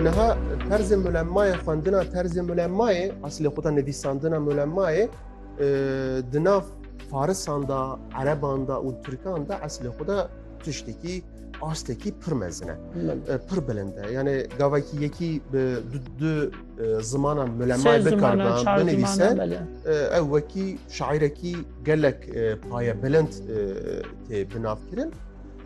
Niha terzê mulemmayê xwendina terzê mulemmayê aslê xwe ta nivîsandina mulemmayê di nav farisan da, ereban da û tirkan da eslê xwe da tiştekî astekî pir mezin e pir bilind e yani gavekî yekî bi du du zimanan mulemmayê bikarda binivîse ew wekî şairekî gelek paye bilind tê binavkirin.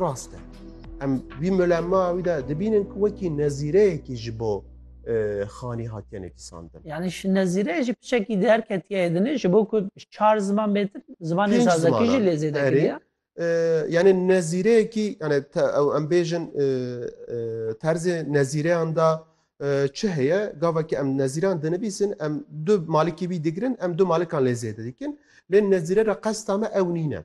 Rast e. Em wî mulema wî de dibînin ku wekî nezîreyekî ji bo xanî hatiye nekîsandin. Yani ji nezîreyê jî piçekî derketiye êdinê ji bo ku çar ziman bêtir zimanê zazakî jî lê zêde kiriye. Yani nezîreyekî yani ew em bêjin terzê nezîreyan da çi heye gavekî em nezîran dinivîsin em du malikî wî digirin em du malikan lê zêde dikin lê nezîre re qesta me ew nîne.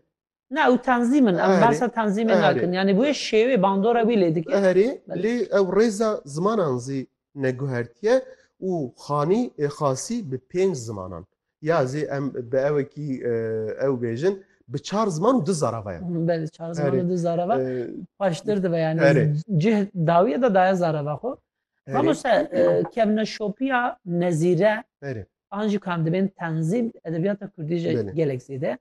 Na ew tenzîm in, em behsa tenzîmê nakin. Yanî bi wê şêwê bandora wî lê dikin. Erê, lê ew rêza zimanan zî neguhertiye û xanî ê xasî bi pênc zimanan. Ya zî em bi ewekî ew bêjin bi çar ziman û du zarava ye. Belê, çar ziman û du zarava xweştir dibe yanî cih dawiye de daye zarava xwe. Mamoste kevneşopiya nezîre an jî ku em dibên tenzîm edebiyata kurdî jî gelek zêde.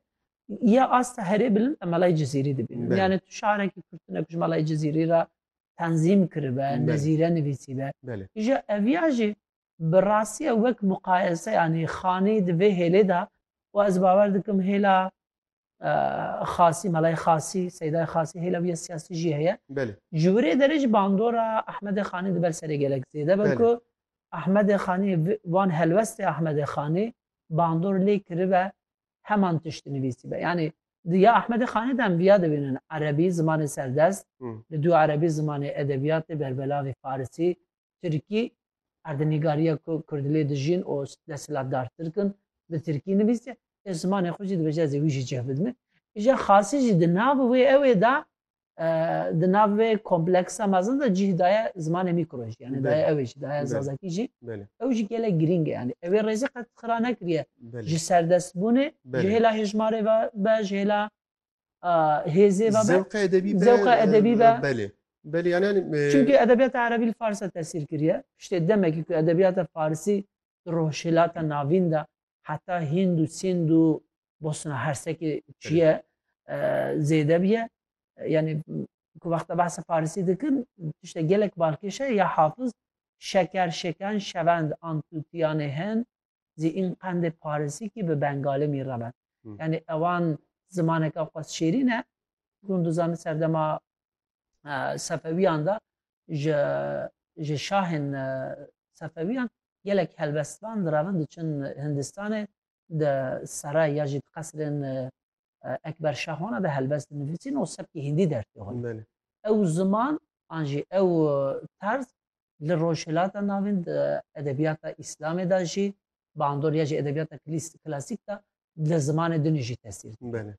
ya asta herê bil emelay cizîrî dibîn yani tu şarekî kurtine ku ji malay cizîrî ra tenzîm kiribe nezîre nivîsîbe ji eviya jî bi rastiye wek muqayese yanî xanî di vê hêlê de û ez bawer dikim hêla xasî malay xasî seyday xasî hêla viya siyasî jî heye ji wirê derê ji bandora Ahmedê xanî di ber serê gelek zêde be ku Ahmedê xanî van helwestê Ahmedê xanî bandor lê kiribe heman tişt nivîsî be. Yanî di ya Ahmedê Xanê de em viya dibînin Erebî zimanê serdest li du Erebî zimanê edebiyatê berbelavê Farisî, Tirkî erdnîgariya ku Kurd lê dijîn û desthilatdar Tirk in bi Tirkî nivîsî ê zimanê xwe jî dibêje ez ê wî jî cih bidime. Îja xasî jî di nav wê ew ê de di nav vê kompleksa mezin de cih daye zimanê mîkro jî yani daye ew jî daye zazakî jî ew jî gelek girîng e yani ew ê rêzê qet xira nekiriye ji serdestbûnê ji hêla hêjmarê ve be ji hêla hêzê ve zewqa edebî be zewqa edebî be belê belê yani çünkü edebiyata erebî li farsa tesîr kiriye piştê demekî ku edebiyata farsî di roşhêlata navîn de heta hînd û sînd û Bosna Hersekê çiye zêde biye yani ku wexta behsa Parisî dikin tişte gelek balkêşe ya hafiz şeker şeken şevend antûtiyanê hen zî în qendê Parisî kî bi bengalê mî rebe yani ewan zimaneka xwes şêrîn e hûn dizanî serdema sefewiyan da ji ji şahên sefewiyan gelek helbestvan diravin diçin Hindistanê di sere ya jî di qesrên e, ekber şahona de helbest dinivîsîn û sebkî hîndî dertê xwe. Belê. Ew ziman an jî ew e, terz li Rojhilata navîn di edebiyata îslamê de jî bi andor ya jî edebiyata kilîs- klasîk de di zimanê din jî tesîr dike. Belê.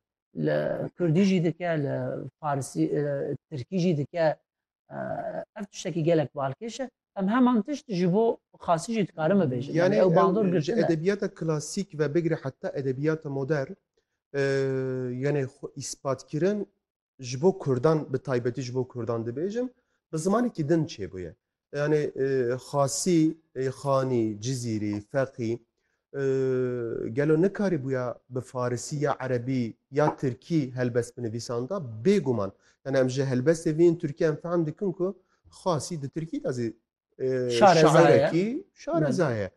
Li kurdî jî dike, li farsî, e, tirkî jî dike, ev tiştekî gelek balkêş e em heman tişt ji bo xasî jî dikarim bibêjin yani ew bandor ji edebiyata klasîk ve bigire heta edebiyata modern yani xwe îspatkirin ji bo kurdan bi taybetî ji bo kurdan dibêjim bi zimanekî din çêbûye yani xasî xanî cizîrî feqî Gelo nikarîbûya bi farisî ya erebî ya tirkî helbest binivîsanda? Bêguman. Yanî em ji helbestê vî yên tirkî em fehm dikin ku xasî di tirkî de zî şarekî şareza ye.